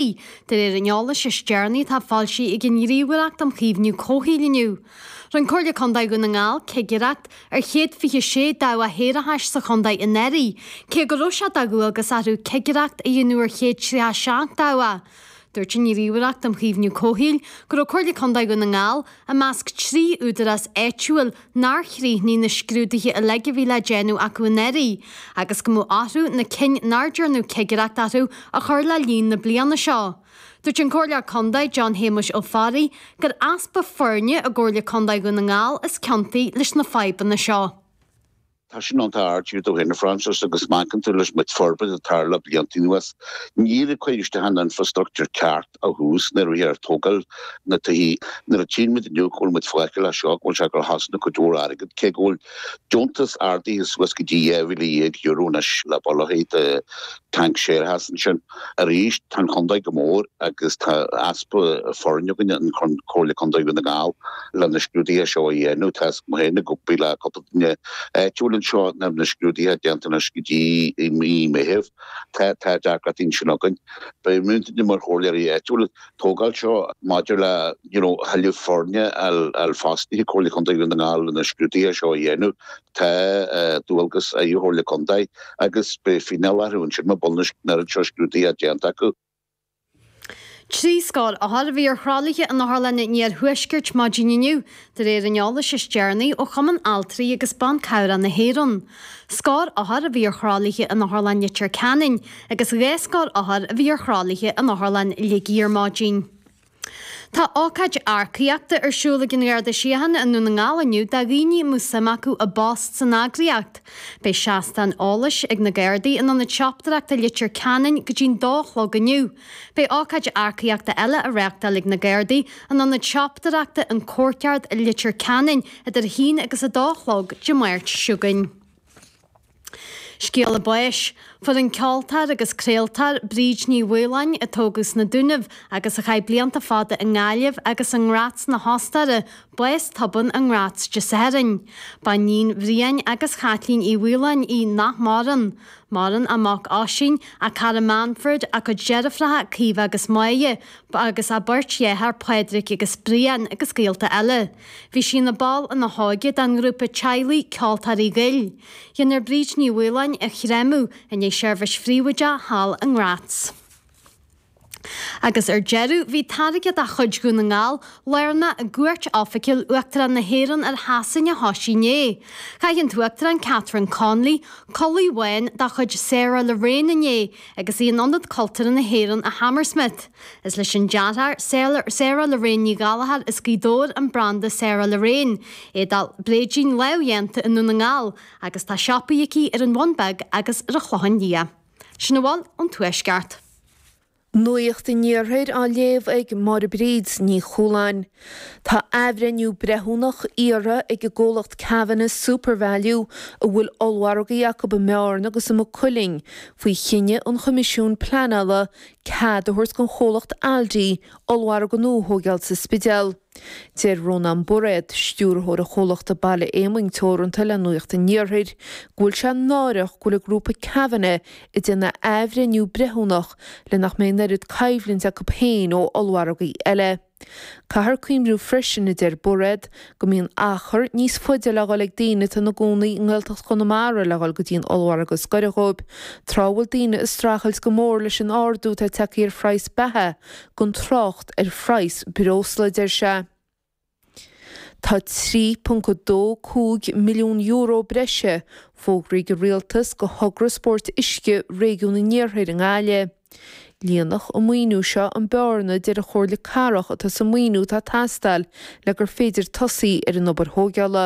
De réir an eolais is deireanaí atá foilsithe ag an Ghníomhaireacht um Chaomhnú Comhshaoil inniu, rinn Comhairle Contae Dhún na nGall cigireacht ar 126 dabhach shéarachais sa chontae anuraidh, cé go raibh sé de dhualgas orthu cigireacht a dhéanamh ar 137 dabhach. Dúirt an Ghníomhaireacht um Chaomhnú Comhshaoil go raibh Comhairle Contae Dhún na nGall i measc trí údarás áitiúil nár chríochnaigh na scrúduithe uilig a bhí le déanamh acu anuraidh agus go mbeadh orthu na cinn nár ndearnadh cigireacht orthu a chur le líon na bliana seo. Dúirt an Comhairleoir Contae, John Shéamuis Ó Fearraigh, gur easpa foirne i gComhairle Contae Dhún na nGall is ciontaí leis na fadhbanna seo. Tá sin iontach ard do dhaoine, Frances, agus má amharcann tú leis an méid forbairt a tharla blianta anuas, ní raibh cuireadh isteach an infreastruchtúr ceart ó thús nuair a bhíthear a' tógáil na dtithe. Nuair a tchíonn muid inniu, go bhfuil muid fágtha leis seo, go bhfuil sé ag cosnú cuid mhór airgid, cé go bhfuil deontas ardaithe suas go dtí €12,000 anois le baol Tanc séarachas ansin. Arís, tá an chontae chomh mór agus tá easpa foirne againn i gComhairle Contae Dhún na nGall le na scrúduithe seo a dhéanamh. Tá fhios agam féin ag obair le cúpla duine áitiúil anseo nach mbeidh na scrúduithe déanta anois go dtí i mí Meitheamh. Tá tá deacracht ansin againn. Beidh muidne mar chomhairleoirí áitiúla ag tógáil seo maidir le you know thuilleadh foirne a fháil fostaithe i gComhairle Contae Dhún na nGall le na scrúduithe seo a dhéanamh. Tá dualgas ar an Chomhairle Contae agus beidh fíneáil orthu ansin muna bhfuil níos mó acu seo scrúduithe déanta acu. Trí scór othar a bhí ar thralaithe in otharlanna an Iarthuaiscirt ar maidin inniu, de réir an eolais is deireanaí ó Chumann Altraí agus Ban Cabhrach na hÉireann. Scór othar a bhí ar thralaithe in Otharlann Leitir Ceanainn agus dhá scór othar a bhí ar thralaithe in Otharlann Shligigh ar maidin. Tá ócáid earcaíochta ar siúl ag an nGarda Síochána i nDún na nGall inniu do dhaoine a mbeadh suim acu i bpost san eagraíocht. Beidh seastán eolais ag na Gardaí in Ionad tSiopadóireachta Leitir Ceanainn go dtí an dó a chlog inniu. Beidh ócáid earcaíochta eile á reáchtáil ag na Gardaí in Ionad tSiopadóireachta an Courtyard i Leitir Ceanainn idir a haon agus a dó a chlog Dé Máirt chugainn. Scéala báis, Fuair an ceoltóir agus craoltóir Bríd Ní Mhaoláin, a tógadh sna Dúnaibh agus a chaith blianta fada i nGaillimh agus i nGraz na hOstaire, bás tobann i nGraz Dé Sathairn. Ba iníon Bhriain agus Chaitlín Uí Mhaoláin í nach maireann. Maireann a mac Oisín, a cara Manfred, a cuid deirfiúracha Caoimhe agus Máire, agus a beirt dhearthár Pádraig agus Brian agus gaolta eile. Bhí sí ina ball ina hóige den ngrúpa teaghlaigh Ceoltóirí Goill. Déanadh Bríd Ní Mhaoláin a chréamadh inné i seirbhís phríobháideach thall i nGratz. Agus ar deireadh bhí táirge de chuid Dhún na nGall, lárnach i gcuairt oifigiúil Uachtarán na hÉireann ar Shasain a thosaigh inné. Chaith an tUachtarán Catherine Connolly culaith bhán de chuid Sarah Lorraine inné agus í in Ionad Cultúrtha na hÉireann i Hammersmith. Is leis an dearthóir, Sarah Lorraine Ní Ghallachair, as Gaoth Dobhair, an branda Sarah Lorraine. Éadaí bréidín lámhdhéanta i nDún na nGall, agus tá siopaí aici ar an Bhun Beag agus ar an Chlochán Liath. Sin a bhfuil ón Tuaisceart. Nuacht an Iarthair á léamh ag Máire Bríd Ní Chualáin. Tá athbhreithniú breithiúnach iarrtha ag an gcomhlacht Kavanagh Supervalu, a bhfuil ollmhargaí acu i mBearna agus i Maigh Cuilinn, faoi chinneadh an Choimisiúin Pleanála cead a thabhairt don chomhlacht Aldi ollmhargadh nua a thóigeáil sa Spidéal. Deir Rónán Bairéad, Stiúrthóir an chomhlachta Baile Éamoinn Teoranta le Nuacht an Iarthair go bhfuil sé náireach go bhfuil an Grúpa Kavanagh ag déanamh athbhreithniú breithiúnach le nach mbeidh an oiread coimhlint acu féin ó ollmhargaí eile. Caithfear cuimhniú freisin, a deir Bairéad, go mbíonn achar níos faide le dhul ag daoine atá ina gcónaí i nGaeltacht Chonamara le dhul go dtí an ollmhargadh is gaire dhóibh, tráth a bhfuil daoine ag streachailt go mór leis an ardú atá ag teacht ar phraghas beatha gan trácht ar phraghas breosla, a deir sé. Tá €3.25 milliún breise fógraithe ag an Rialtas go Thogra Spóirt Uisce Réigiún an Iarthair i nGaillimh. Líonfadh an maoiniú seo an bearna a deir an Chomhairle Cathrach atá sa maoiniú atá ag teastáil le gur féidir tosaí ar an obair thóigeála.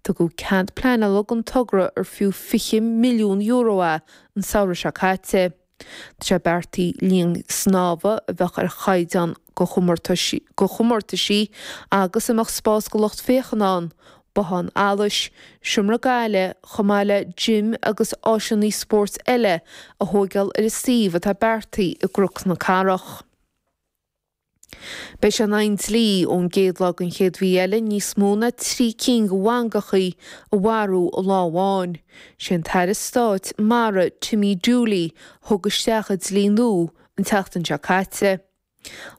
Tugadh cead pleanála don togra ar fiú €20 milliún é an samhradh seo caite. Tá sé beartaithe linn snámha a bheadh ar chaighdeán go chomórtaisí agus a mbeadh spás go lucht féachana ann, Bothán Allais, Seomra Gaile, chomh maith le Gym agus áiseanna spóirt eile a thóigeáil ar a suíomh atá beartaí i gCnoc na Cathrach. Beidh sé in aghaidh an dlí ón gcéad lá den chéad mhí eile níos mó ná trí cinn de mhangachaí a mharú i lá amháin. Sé an tAire Stáit Mara Timmy Dooley a thug isteach a dlí nua an tseachtain seo caite.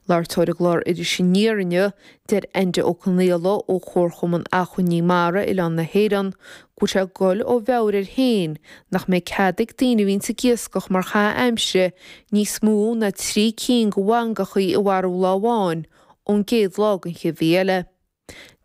Ag labhairt dó ar an gclár Iris Aniar inniu, deir Enda Ó Conaola ó Chomharchumann Acmhainní Mara Oileán na hÉireann go bhfuil sé ag gol ó mheabhair air féin nach mbeidh cead ag daoine a bhíonns ag iascach mar chaitheamh aimsire níos mó ná trí cinn de mhangachaí a mharú lá amháin ón gcéad lá den chéad mhí eile.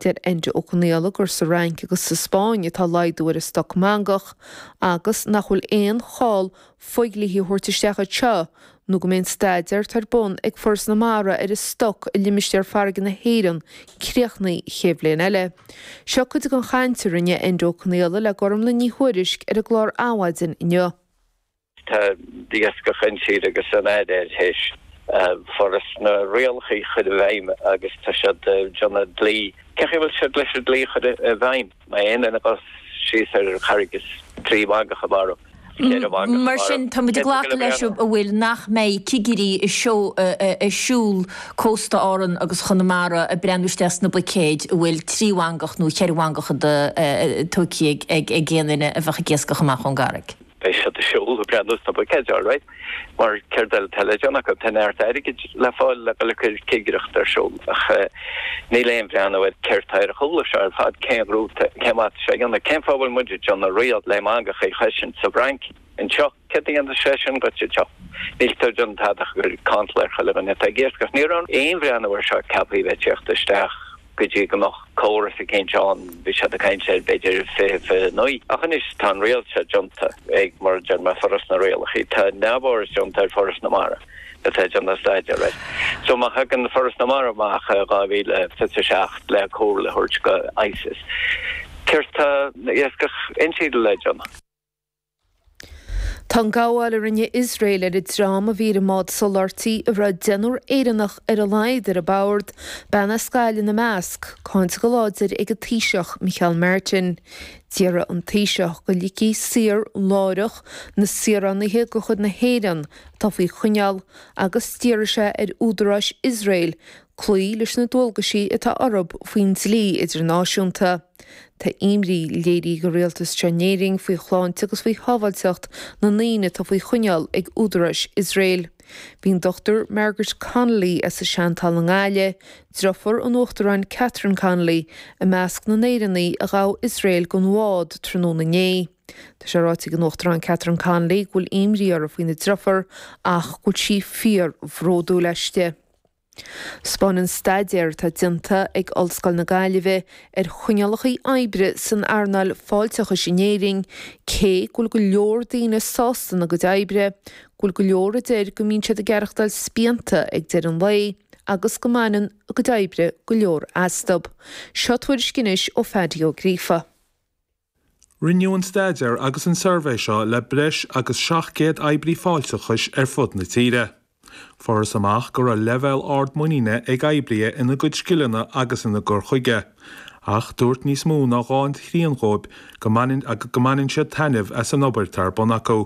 Deir Enda Ó Conaola gur sa Fhrainc agus sa Spáinn atá laghdú ar an stoc mangach agus nach bhfuil aon chall fógraí a thabhairt isteach anseo nó go mbeidh an staidéar atá ar bun ag Foras na Mara ar an stoc i limistéar farraige na hÉireann críochnaithe faoi cheann bliain eile. Seo cuid den chaint a rinne Enda Ó Conaola le Gormlaith Ní Thuairisg ar an gclár Adhmhaidin inniu. Tá d'iascach annsiud agus an údar tar éis Foras na rialacha a chur i bhfeidhm agus tá siad ag déanamh dlí. Cé chaoi a bhfuil siad leis an dlí a chur i bhfeidhm? Má aon duine ag dul síos ar an gcarraig is trí mhangach a mharú, ceithre mhangach a mharú. Mar sin, táimid ag glacadh leis, an bhfuil nach mbeidh cigirí ag siúl cósta Árann agus Chonamara ag breathnú isteach sna buicéid a bhfuil trí mhangach nó cheithre mhangach ag aon duine a bheadh ag iascach amach ón gcarraig. beidh siad ag siúl ag breathnú sna buicéid alright mar céard eile tá le déanamh acu, tá neart airgid le fáil le dul ag cur cigireacht ar siúl ach níl aon bhreathnú ar céard tá ar an chúl seo ar fad, cén rúta, cén fáth atá sé a dhéanamh, cén fáth a bhfuil muid ag déanamh riail le mangachaí a chosaint sa bhFrainc, anseo, céard a dhéanfas sé sin duit anseo, níl tú ag déanamh tada ach ag cur cantal ar chuile dhuine atá ag iascach, ní raibh aon bhreathnú ar seo ceaptha a bheith ag tíocht isteach. go dtí go mbeadh córas eicínt ann, bhí siad ag caint ar b'fhéidir fiche, fiche naoi. Ach anois tá an riail seo déanta ag, mar a deir mé, Foras na Rialachaí. Tá neamhfhoras déanta ar Foras na Mara atá ag déanamh staidéar air. So má thagann Foras na Mara amach i dhá mhíle fiche seacht le comhairle a thabhairt go ICES, céard tá iascach intíre le déanamh? Tá an gabháil a rinne Iosrael ar an dream a bhí ar an mbád soláthairtí a raibh deichniúr Éireannach ar a laghad ar a bord, bean as Gaillimh ina measc, cáinte go láidir ag an Taoiseach Micheál Martin. D'iarr an Taoiseach go ligfí saor láithreach na saoránaithe de chuid na hÉireann atá faoi choinneáil agus d'iarr sé ar údaráis Iosrael cloí leis na dualgaisí atá orthu faoin dlí idirnáisiúnta. Tá imní léirithe ag an Rialtas seo in Éirinn faoi shláinte agus faoi shábháilteacht na ndaoine atá faoi choinneáil ag údaráis Iosrael. Bhí an Dr Margaret Connolly as an Seantalamh i nGaillimh, driofúr an Uachtaráin Catherine Connolly, i measc na nÉireannach a ghabh Iosrael den bhád tráthnóna inné. Tá sé ráite ag an Uachtarán Catherine Connolly go bhfuil imní uirthi faoina driofúr ach go bhfuil sí fíor-bhródúil aisti. Spáineann staidéar atá déanta ag Ollscoil na Gaillimhe ar choinníollacha oibre san earnáil fáilteachais in Éirinn cé go bhfuil go leor daoine sásta ina gcuid oibre, go bhfuil go leor a deir go mbíonn siad ag aireachtáil spíonta ag deireadh an lae agus go mbaineann a gcuid oibre go leor astu. Seo tuairisc anois ó Phaidí Ó Gríofa. Rinneadh an staidéar agus an suirbhé seo le breis agus 700 oibrí fáilteachais ar fud na tíre. Fuarthas amach go raibh leibhéal ard muiníne ag oibrithe ina gcuid scileanna agus ina gcur chuige, ach dúirt níos mó ná dhá thrian dhóibh go mbaineann siad taitneamh as an obair atá ar bun acu.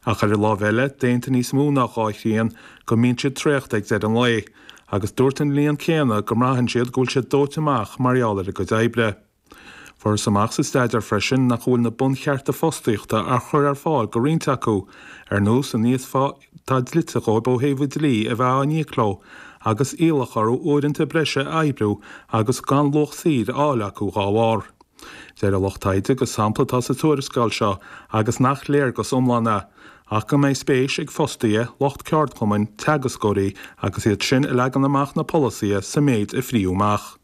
Ach ar an láimh eile, d'aontaigh níos mó ná dhá thrian go mbíonn siad traochta ag deireadh an lae, agus dúirt an líon céanna go mbraitheann siad go bhfuil siad dóite amach mar gheall ar a gcuid oibre. Fuarthas amach sa staidéar freisin nach bhfuil na bunchearta fostaíochta á chur ar fáil do roinnt acu, ar nós an íosphá atá dlite dhóibh ó thaobh an dlí a bheith á n-íoc leo, agus iallach orthu uaireanta breise a oibriú agus gan luach saothair a fháil acu dhá bharr. Deir an lucht taighde gur sampla atá sa tuarascáil seo, agus nach léargas iomlán é, ach go mbeidh spéis ag fostaithe, lucht ceardchumann, teagascóirí agus iad sin a leagann amach na polasaithe sa méid a frítheadh amach.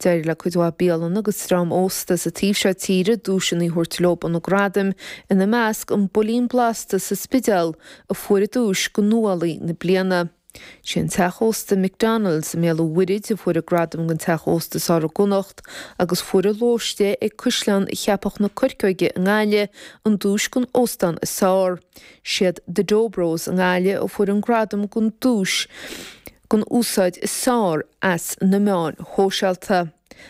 D'éirigh le cuid mhaith bialanna agus dream ósta sa taobh seo tíre duaiseanna a thabhairt leo ó na gradaim, ina measc An Builín Blasta sa Spidéal a fuair an duais do 'Nuálaí na Bliana'. Sé an teach ósta McDonnell's i mBéal an Mhuirthid a fuair an gradam don teach ósta is fearr i gConnacht agus fuair An Lóiste ag Caisleán Cheapach na Corcóige i nGaillimh an duais don óstán is fearr. Siad The Dough Bros i nGaillimh a fuair an gradam don duais don úsáid is fearr as na meáin shóisialta.